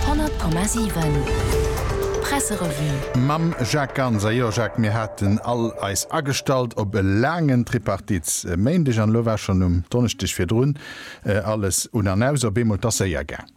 100,7 Presserevue. Mam Jacques Ganser, jo Jacques, mir haten all eis agestallt op e laangen Tripartite e Méindeg an elo war schonn um Donneschdeg virdrun alles un an aus. Op eemol, 't ass séier gaang.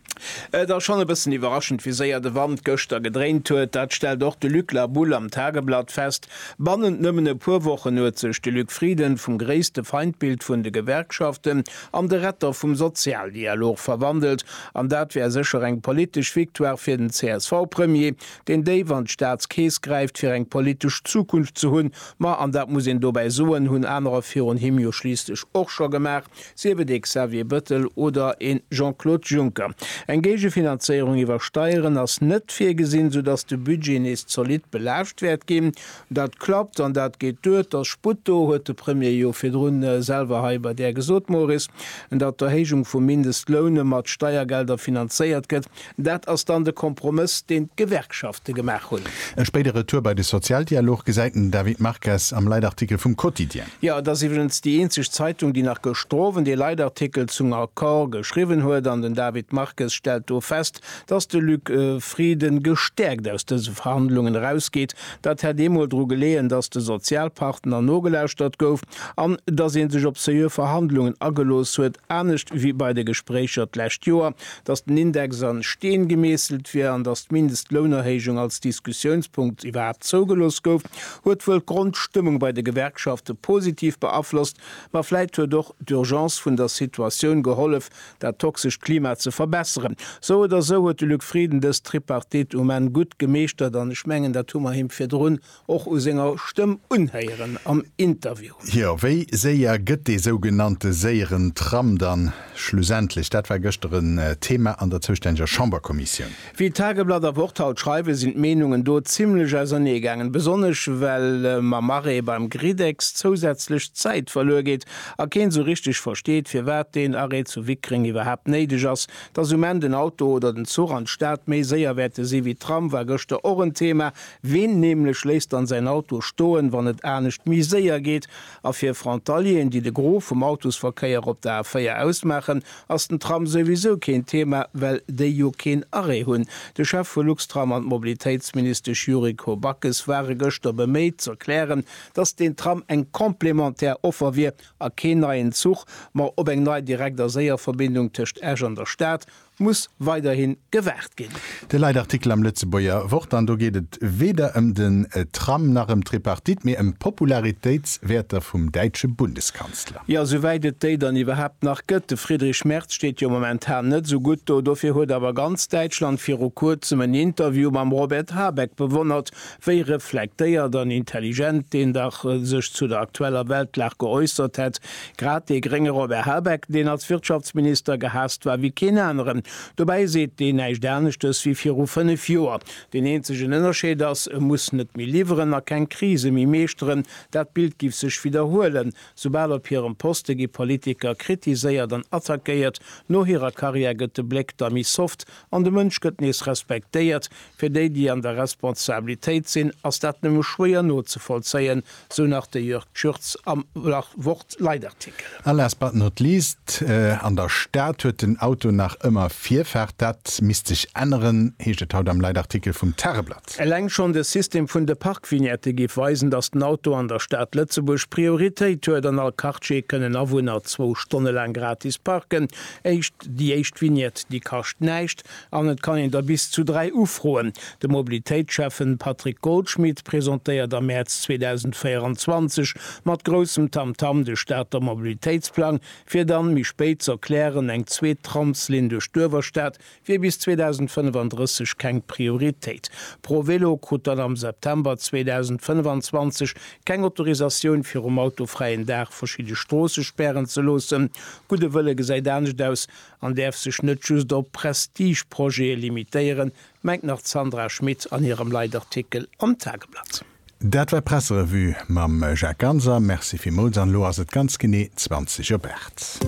Et ass schonn e bëssen iwwerraschend, wéi séier de Wand gëschter gedréint huet. Dat stellt och de Luc La Boule am Tageblatt fest. Bannent nëmmen e puer Wochen huet sech de Luc Frieden vum gréisste Feindbild vun de Gewerkschaften, an de Retter vum Sozialdialog verwandelt, an dat wär sécher eng politesch Victoire fir den CSV-Premier, deen déif an d'Staatskeess gräift, fir eng politesch Zukunft ze hunn. Ma, an dat muss een dobäi soen, hunn anerer virun him jo schliisslech och scho gemaach, sief et ee Xavier Bettel oder ee Jean-Claude Juncker. Eng Géigefinanzéierung iwwer Steieren ass net virgesinn, soudatt de Budget nees zolidd belaascht wäert ginn, Dat klappt an dat geet duer. Et ass Sputt do, huet de Premier jo virdrun selwer hei bei Där gesot, Moris. Datt d'Erhéijung vum Mindestloun mat Steiergelder finanzéiert gëtt, dat ass dann de Kompromëss, deen d'Gewerkschafte gemaach hunn. E spéide Retour bei de Sozialdialog gesäit den David Marques am Leitartikel vum Quotidien. Jo, et ass iwwregens déi eenzeg Zeitung, déi nach gëschter Owend ee Leitartikel zum Accord geschriwwen huet. An den David Marques stellt do fest, Datt de Luc Frieden gestäerkt aus dëse Verhandlungen erausgeet, dat hätt eemol dru geleeën, datt de Sozialpartner nogelauschtert gouf an datt ee sech op seriö Verhandlungen agelooss huet, anescht wéi bei de Gespréicher d'lescht Joer, datt den Index a Steen gemeesselt wier an datt d'Mindestlounerhéijung als Diskussiounspunkt iwwerhaapt zougelooss gouf, huet wuel d'Grondstëmmung bei de Gewerkschafte positiv beaflosst, ma vläit huet och d'Urgence vun der Situatioun gehollef, dat toxescht Klima ze verbesseren. Sou oder sou huet de Luc Frieden dës Tripartite um Enn gutt gemeeschtert an ech mengen, dat hu mer him virdrun och u senger Stëmm unhéieren am Interview. Jo, wéi séier gëtt dee sougenannte séieren Tram dann schlussendlech? Dat war gëschter en Thema an der zoustänneger Chamberkommissioun. Wéi Tageblatt a Wort haut schreiwen, sinn d'Meenungen do zimmlech ausernee gaangen, besonnesch well mam Arrêt beim Griddex zousätzlech Zäit verluer geet a keen sou richteg versteet, firwat deen Arrêt zu Wickreng iwwerhaapt néideg ass. Dass um Enn den Auto oder den Zuch an d'Stad méi séier wäerte si wéi d'Tram, war gëschter och en Thema. Ween nämlech léisst dann säin Auto stoen, wann et anescht méi séier geet? A fir Frontalieren, déi de Gros vum Autosverkéier op der A4 ausmaachen, ass den Tram souwisou keen Thema, well déi jo keen Arrêt hunn. De Chef vu Luxtram an d'Mobilitéitsministesch Yuriko Backes ware gëschter beméit z'erklären, datt deen Tram eng complémentaire Offer wier a keen neien Zuch, ma op eng nei Direkt a Séierverbindung tëscht Esch an der Stad muss weiderhi gewaart ginn. De Leitartikel am Lëtzebuerger Wort an do geet et weder ëm den Tram nach ëm d'Tripartite, mee ëm d'Popularitéitswäerter vum däitsche Bundeskanzler. Jo, souwäit et déi dann iwwerhaapt nach gëtt. De Friedrich Merz steet jo momentan net esou gutt do. Dofir huet awer ganz Däitschland viru Kuerzem en Interview mam Robert Habeck bewonnert, wéi reflektéiert an intelligent deen dach sech zu der aktueller Weltlag geäussert hätt. Grad dee grénge Robert Habeck, deen als Wirtschaftsminister gehaasst war wéi keen aneren. Dobäi seet deen näischt aneschtes wéi viru 5 Joer. Deen eenzegen Ënnerscheed ass, e muss net méi liwweren a keng Krise méi meeschteren. Dat Bild giff sech widderhuelen. Soubal op hirem Poste gi Politiker kritiséiert an attackéiert. No hirer Karriär gëtt de Bléck da méi soft an de Mënsch gëtt nees respektéiert. Fir déi, déi an der Responsabilitéit sinn, ass dat nëmme schwéier nozevollzéien, sou nach de Jörg Tschürz am Wort-Leitartikel. A last but not least, An der Stad huet den Auto nach ëmmer Virfaart. Dat misst sech änneren, heescht et haut am Leitartikel vum Tageblatt. Stad. Eleng schonn de System vun de Parkvignette géif weisen, datt den Auto an der Stad Lëtzebuerg Prioritéit huet. An all Quartier kënnen Awunner zwou Stonne laang gratis parken. Éischt, Déi éischt Vignette, déi kascht näischt an et kann een der bis zu dräi ufroen. De Mobilitéitsschäffe Patrick Goldschmidt presentéiert am Mäerz 2024 mat groussem Tamtam de Stater Mobilitéitsplang, fir dann méi spéit z'erklären, eng zweet Tramslinn duerch d'Uewerstad wier bis 2035 keng Prioritéit. ProVelo krut dann am September 2025 keng Autorisatioun fir um autofräien Dag verschidde Stroosse spären ze loossen. Gudde Wëlle gesäit anescht aus an däerf sech net just op Prestigeprojete limitéieren, mengt nach d'Sandra Schmid an hirem Leitartikel am Tageblatt. Dat war d'Presserevue mam Jacques Ganser. Merci villmools an elo ass et ganz genee 20 op 8.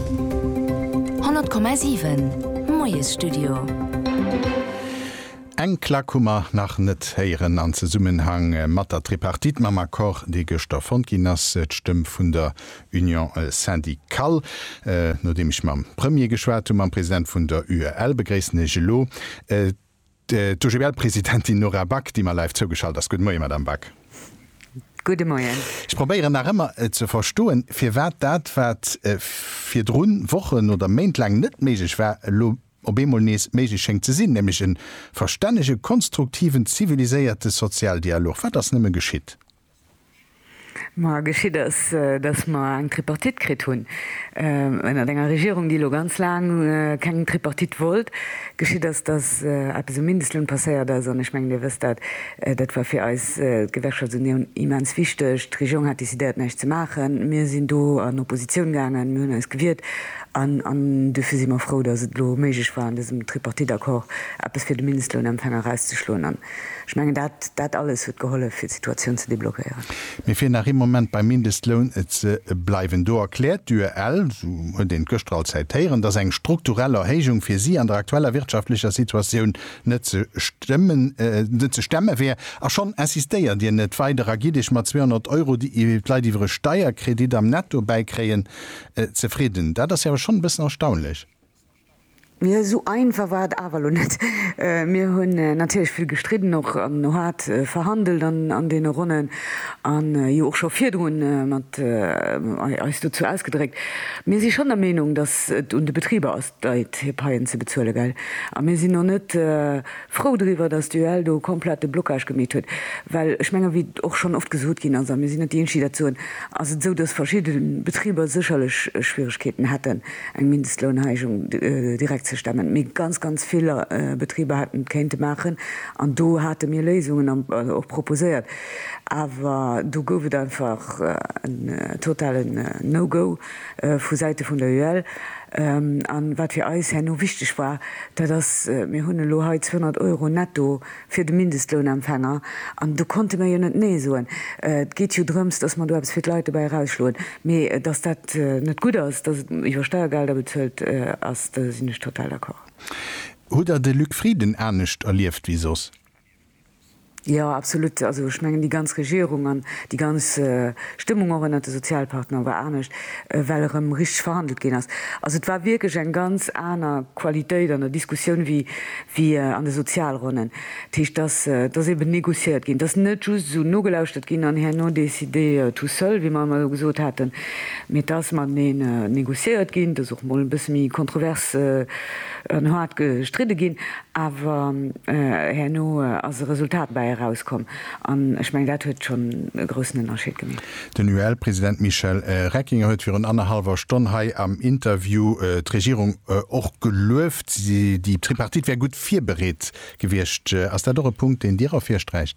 100,7 Moiesstudio. Eng Klack hu mer nach net héieren an Zesummenhang mat der Tripartite, mam Accord, dee gëschter fonnt ginn ass, d'Stëmm vun der Union syndicale. Nodeem ech mam Premier geschwat hunn, mam President vun der UEL, begréissen ech elo D'OGBL-Presidentin Nora Back, déi mer live zougeschalt ass. Gudde Moie, Madame Back. Gudde Moien. Ech probéieren nach ëmmer ze verstoen, firwat dat, wat virdru Wochen oder Méint laang net méiglech war, elo op eemol nees méiglech schéngt ze sinn, nämlech e verstännege, konstruktiven, ziviliséierte Sozialdialog. Wat ass nëmme geschitt? Ma geschitt ass, datt mer eng Tripartite kritt hunn, ënnert enger Regierung, déi elo ganz laang keng Tripartite wollt. Geschitt ass, datt eppes um Mindestloun passéiert ass, an ech mengen, Dir wësst dat, dat war fir eis, d'Gewerkschaftsunioun, immens wichteg. D'Regierung hat decidéiert, näischt ze maachen. Mir sinn do an Oppositioun gaangen, mir hunn eis gewiert. An duerfir si mer frou, datt et elo méiglech war, an dësem Tripartite-Accord eppes fir de Mindestlounempfänger erauszeschloen. Ech mengen, dat, dat alles huet gehollef, fir d'Situatioun ze deblockéieren. Mee fir nach ee Moment beim Mindestloun ze bleiwen, do erkläert d'UEL, esou huet een et gëschter all Zäit héieren, datt eng strukturell Erhéijung fir si an der aktueller wirtschaftlecher Situatioun net ze stëmmen, net ze stemme wär. A schonn insistéiert Dir net weider a gitt Iech mat 200 Euro, déi d'Leit iwwer e Steierkredit am Netto bäikréien, zefridden. Dat ass jo awer schonn e bëssen erstaunlech. Mee esou einfach war et awer elo net. Mir hunn natierlech vill gestridden, och no haart verhandelt an deene Ronnen an jo och scho virdru mat eis dozou ausgedréckt. Mir si schonn der Meenung, datt et un de Betriber ass, d'Leit hir Paien ze bezuelen, gell. A mir sinn och net frou driwwer, datt d'UEL do komplett de Blocage gemeet huet, well ech mengen, wéi och schonn oft gesot ginn ass, a mir sinn net déi eenzeg, déi dat soen, ass et esou, datt verschidde Betriber sécherlech Schwieregkeeten hätten, eng Mindestlounheijung direkt ze stemmen, mee ganz, ganz vill Betriber hätten et kéinte maachen. An do hate mir Léisungen och proposéiert, awer do gouf et einfach en totalen No-Go vu Säite vun der UEL. A wat fir eis herno wichteg war, dat ass, mir hunn elo hei 200 Euro netto fir de Mindestlounempfänger, an do konnte mir jo net Nee soen. Et geet jo drëms, dass mer do eppes fir d'Leit dobäi erausschloen. Mee dass dat net gutt ass, dass et iwwer Steiergelder bezuelt ass, do sinn ech total d'accord. Hutt Der de Luc Frieden anescht erlieft wéi soss? Jo, absolut. Also ech mengen, déi ganz Regierung an déi ganz Stëmmung och ënnert de Sozialpartner war anescht, well erëm richteg verhandelt ginn ass. Also et war wierklech eng ganz aner Qualitéit an der Diskussioun wéi wéi an de Sozialronnen. Dat heescht, dass, dass eeben négociéiert ginn, dass net just esou nogelauschtert ginn an herno décidé tout seul, wéi mer ëmmer elo gesot haten, mee dass mateneen négociéiert ginn, dass och emol e bësse méi kontrovers an haart gestridde ginn, awer herno ass e Resultat bäi erauskomm. An ech mengen, dat huet schonn e groussen Ënnerscheed gemeet. Den UEL-President Michel Reckinger huet virun annerhallwer Stonn hei am Interview d'Regierung och gelueft. Déi Tripartite wär gutt virbereet gewiescht. Ass dat och e Punkt, deen Dir ervirsträicht?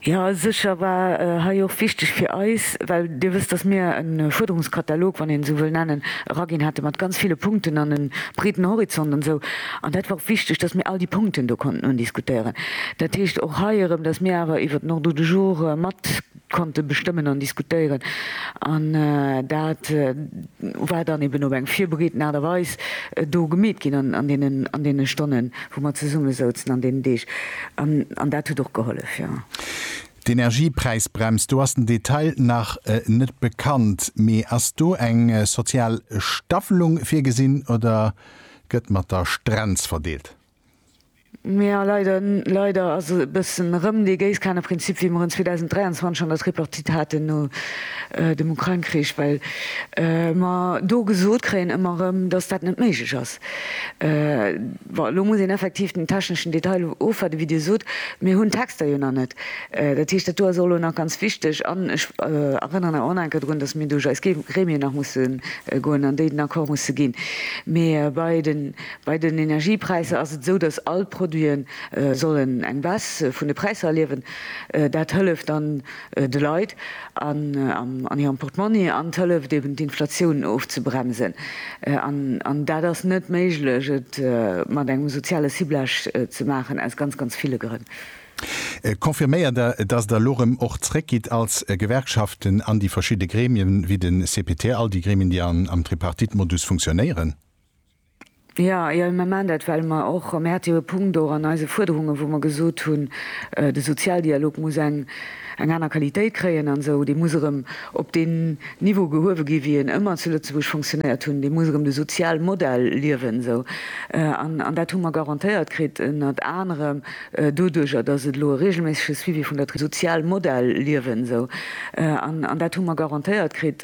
Jo, sécher war hei och wichteg fir eis, well Dir wësst, datt mir e Fuerderungskatalog, wann een esou wëll nennen, eraginn hate mat ganz ville Punkten an e breeten Horizont an esou. An dat war och wichteg, dass mir all déi Punkten do konnten undiskutéieren. Dat heescht och hei erëm, dass mir awer iwwert den Ordre du jour mat konnte bestëmmen an diskutéieren. An dat war dann eben op eng virbereeten Aart a Weis do gemeet ginn an deene Stonnen, wou mer zesummesouzen, an deenen Deeg. An dat huet och gehollef, jo. D'Energiepräisbrems, do ass den Detail nach net bekannt. Mee ass do eng sozial Staffelung virgesinn, oder Gëtt mat der Strenz verdeelt. Mee jo, leider, leider ass e bëssen erëm dee Géisskaneprinzip, wéi mer en 2023 an der Tripartite haten no dem Ukrain-Krich, well mer do gesot kréien ëmmer erëm, dass dat net méiglech ass. Bon, elo muss een effektiv den techneschen Detail ofwaarden, wéi Dir sot. Mir hunn d'Texter jo nach net. Dat heescht, dat do ass och elo nach ganz wichteg. An ech erënneren awer och nach eng Kéier drun, datt mir duerch eis Gremien nach musse goen an déi den Accord musse ginn. Mee bei den Energiepräisser ass et esou, datt all d'Produite sollen eng Baisse vun de Präisser erliewen. Dat hëlleft dann de Leit an hirem Portmonni an et hëlleft eben, d'Inflatioun ofzebremsen. An dat ass net méiglech, et mat engem soziale Ciblage ze maachen, aus ganz, ganz ville Grënn. Confirméiert Der, dass Der elo erëm och zréckgitt als Gewerkschaften an déi verschidde Gremien, wéi de CPT, all déi Gremien, déi am Tripartite-Modus funktionéieren? Jo, ier mer maachen dat, well mer och, mir hate jo e Punkt och an eise Fuerderungen, wou mer gesot hunn, de Sozialdialog muss eng aner Qualitéit kréien an esou, dee muss erëm op deen Niveau gehuewe gi wéi en ëmmer zu Lëtzebuerg funktionéiert hunn, dee muss erëm de Sozialmodell liewen esou. An dat hu mer garantéiert kritt ënnert anerem. Doduerch, a dass et elo e reegelméissege Suivi vun der. Sozialmodell liewen, esou. An dat hu mer garantéiert kritt.